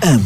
FM.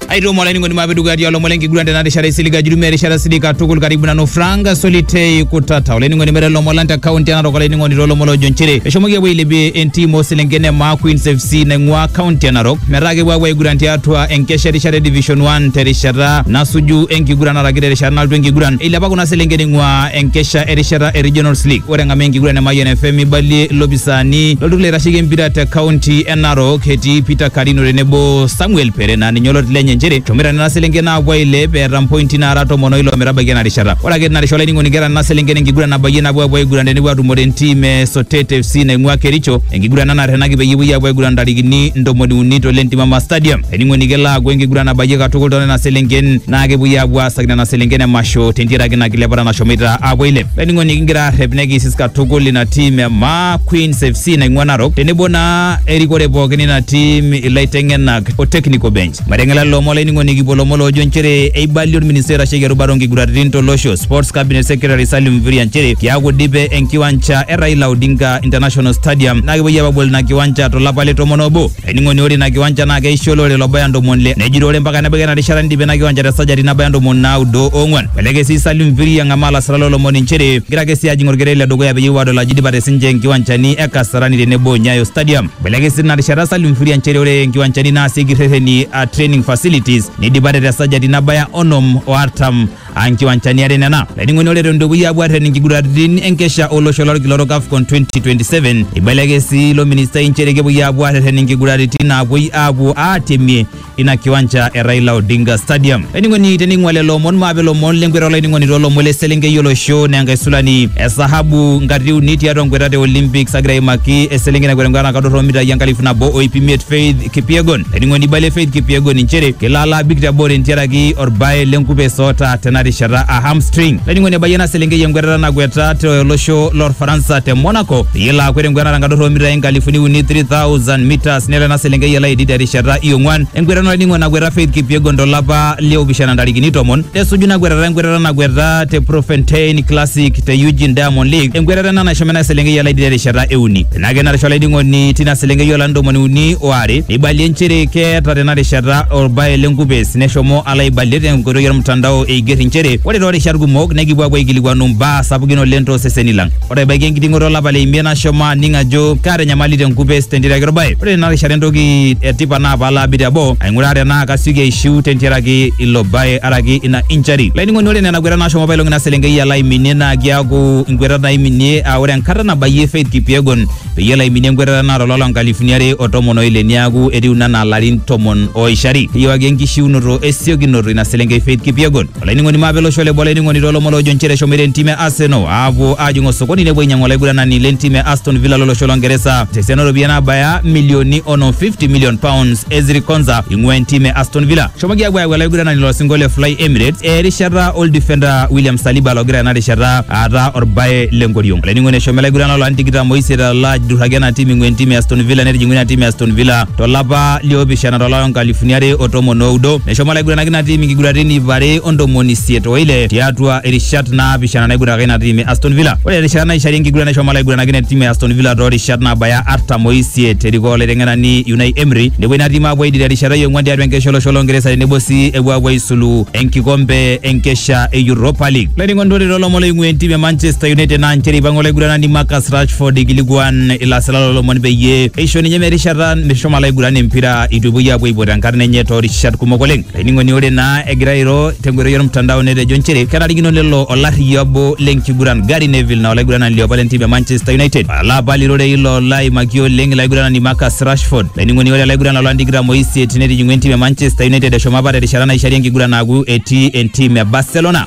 aitomo olainining'oni maape dukuya tialo lomon lenkiguran tena rishata isilig ajurumia erishata silig katukul karibu nanu frank solitei kutata olainining'oni mere lomon lang te kaunti enarok olainining'oni too lomon loojo nchere eshomoki apuo ailepie entim ooselenken e maa queens fc naing'ua kaunti enarok metaa kepuo apuo aiguran tiatua enkesha erishata e division 1 terishata nasuju enkiguran araki terishata nalotu enkiguran eilepa kuna selenken eing'ua enkesha erishata e regionals league ore eng'amaa enkiguran e mayian fm ibalie ilopisaani lolturur loitasheki empira te kaunti e Narok etii Peter Karino tenebo Samuel Pere naa ninye oloti lenye nchere eshomoita nena selenken aapuo ailep eeta mpointi naara tomon oile ometabaiki ena rishata. Ore ake tina rishata olainining'oni keeta nena selenken enkiguran nabayie nabo apuo aiguran tenepuo aatumore entim e Sotet FC naing'ua Kericho, enkiguran ena naterrenaki peyie epuoi apuo aiguran ntarikini ntomoni uni to Lentimama Stadium. Olainining'oni kelo aaku enkiguran nabayie katukul too nena selenken naa kepuoi aapuo aasaki nena selenken emasho tentiaraki ina kilepata nashomoita aapuo ailep. Olainining'oni kigira aarrep nekisiska tukul ina tim e maa Queens FC naing'ua Narok tenebo naa erikore pookin ina tim ilaiteng'enak o technical bench. Mateng'ela lelo omon laining'oni kipuo lomon loojo nchere eibalie orministai oitasheki erubata onkiguraritin tolosho Sports Cabinet Secretary Salim Mvurya nchere kiaku idipe enkiwanja e Raila Odinga International Stadium naa kepuoi apa abol ina kiwanja tolapa le tomon obo. Ainining'oni ore ina kiwanja naa keisho olorere lobaya ntomoni ile nejito ore mpaka nebaiki ena rishata neidipa ina kiwanja te sajati nabaya ntomoni naudo oong'wan. Eleke sii Salim Mpiria eng'amaa lasirak loo lomon inchere egira ake sii ajing olkererin le dukuya peyie epuo aadol ajo eidipate sinche nkiwanjani e Kasarani tenebo Nyayo Stadium. Eleke sii tina rishata Salim Mpiria inchere ore nkiwanjani naasieki rreteni aa training facilities neidipate te sajati nabaya onom o artam. ankiwanchani are nena laining'oni ore eton dukuya apuo arren inkiguraritin enkesha olosho lolkila orok AFCON 2027 ibeleke sii ilo ministai inchere kepuoi apuo arrerren inkiguraritin naapuoi apuo aatemie ina kiwanja e Raila Odinga Stadium laining'oni tening'ua lelo omon maape ilomon lenkweta olaining'oni toolomon le selenkei olosho naa enkaisulani e sahabu nkati uni tiatua nkwetata e Olympics agira aimaki eselenkei nakwet enkwetata nakadur omitai enkalifu nabo o iip imiet Faith Kipyegon. Ening'oni Ibale Faith Kipyegon inchere kelo alo abik te boo tentiaraki orbae lenkupees oota tena rishata a hamstring. Ening'oni ebayie ena selenkei enkwetata nakweta tolosho lorfaransa te Monaco peyie elo akwet enkwetata tenkadorro oomitai inkalifuni uni 3000 meters nelo ena selenkei alo aidid terishata iong'uan enkwetata olainining'oni nakweta Faith Kipyegon tolapa liopishana ntarikini tomon nesuju ina kwetata enkwetata nakweta te Profontaine Classic te Eugene Diamond League enkwetata ena nashomo ena selenkei alo aidid terishata euni. Ina kenarisho olainining'oni tina selenkei olari ntomoni uni oare neibalie nchere keeta tena rishata orbae lenkupes neshomo alo aibalie tenkoitoi ormtandao eiger inchere ore too rishat kumok nekipuo apuo aikilikuanu mbaa sapukin oleng too seseni lang. Ore ebaiki enkiting'oto olapa le imiet nashomo aning ajo kaata enyamali tenkupes tentiaraki orbae. Ore tena rishata entoki e tipat naa paalo abik teboo aing'uraa tenaa kasioki aishiu tentiaraki ilo bae araki ina injury. Olainining'oni ore nena kuetat nashomo apailong ina selenkei alo aiminie naa kiaku nkuetat naiminie aa ore enkata nabayie Eliud Kipyegon peyie elo aiminie enkwetata naata ololo nkalifuni are o tomon o ile niaku etiu ina anaa larin tomon oishari. Eyiewaki enkishiunoto esiokinoto ina selenkei Faith Kipyegon. Olainining'oni maape olosho le boo olainining'oni too lomon loojo nchere eshomoita entim e Arsenal aapuo aajing osokoni nepuo ainyang'u olaiguranani le ntim e Aston Villa lo losho lo Ngeresa te siana o ropiyiani naabaya milioni onom 50 million pounds. Ezri Konsa eing'ua entim e Aston Villa. Eshomoki aapuo aayau olaiguranani lo singo le Fly Emirates erishata o ldifenda William Saliba logira ena rishata aata orbae le nkoriong. olainining'oni eshomo laiguranani lolarin tikitam oisiet alo ajurraki ena tim ing'ua entim e Aston Villa netijing'u ina tim e Aston Villa tolapa liopishana tolari lonkalifuni are o tomon oudo neshomo laiguranaki ina tim inkiguratin iip are o ntomoni isiet oile tiatua irishat naapishana naiguraka ina tim e Aston Villa ore erishata naishari enkiguran neshomo laiguranaki ina tim e Aston Villa toorishat naabaya artam oisiet erikoo olaiteng'enani Unai Emery nepuo ina tim aapuo aidid terishata e ong'uan tiatua enkesha olosho longeresa tenebo sii epuo aapuo aisulu enkikombe enkesha e Europa League laining'ondore lolomon loing'ua entim e manchester united naa nchere eipangu olaiguranani marcus rashford ikilikuan ilasilal lolomon peyie eisho ninye merishata meshomo alaiguran empira eitu epuoi apuo aipot enkarna enye toorishat kumok oleng laining'oni ore naa egira airo tenkoitoi ormtandao netejo nchere kenarikino nelo olarri obo lenkiguran gary neville naa olaiguranani liopa lentim e manchester united ala apal irorei ilo laimaki oleng ilaiguranani marcus rashford laining'oni ore olaiguran lolani tikitam oisiet netijing'ua entim e manchester united eshomo apa terishata naishari enkiguran aaku etii entim e barcelona